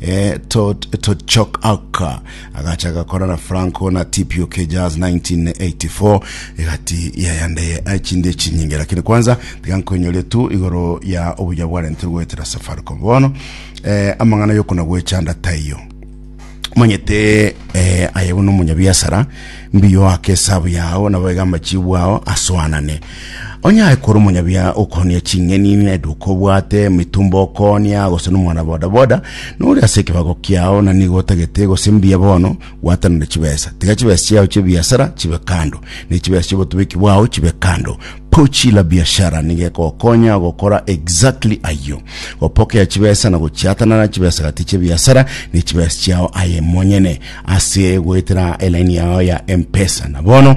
Eh, to, to chok aka agachaka korana franco na tpok jazz 1984 egati yayandeye achinde echinyinge lakini kwanza tigankonyorie tu igoro ya obuya bwarentire goetera safaricom bono eh, amang'ana yokona gwechanda taiyo manyete eh, aye bono omonyabiasara mbiyo ake esabu yao nabo iga amachibu ao asoanane Onye aye kore omonyabiya okoonia ching'eni neduka obwate emitumba okoonia gose nomwana bodaboda nore ase ekebago kiao na nigo otagete gose mbuya bono gwatanore chibesa tiga chibesa chiao chi'ebiasara chibe kando ne chibesa chi'obotubeki bwao chibe kando pochi la biashara nigo ekogokonya gokora exactly ayio gopokea chibesa na gochiatanana chibesa gati chi'ebiasara ne chibesa chiao aye monyene ase goetera elaini yao ya mpesa na bono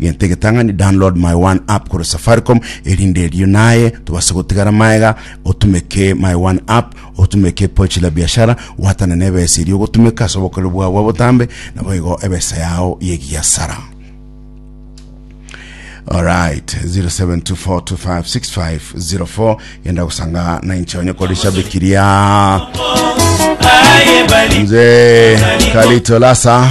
Gento egetang'ani download my one app korwa safaricom erinde erio naye tobase gotigara maega otumeke my one app otumeke pochi la biashara watana na ebesa erio ogotumeka ase obokoreri bwao bwa botambe naboigo ebesa yao yegiasara Alright, 0724256504 yenda gusanga na inche onye kori shabikiria mzee Kalito Lasa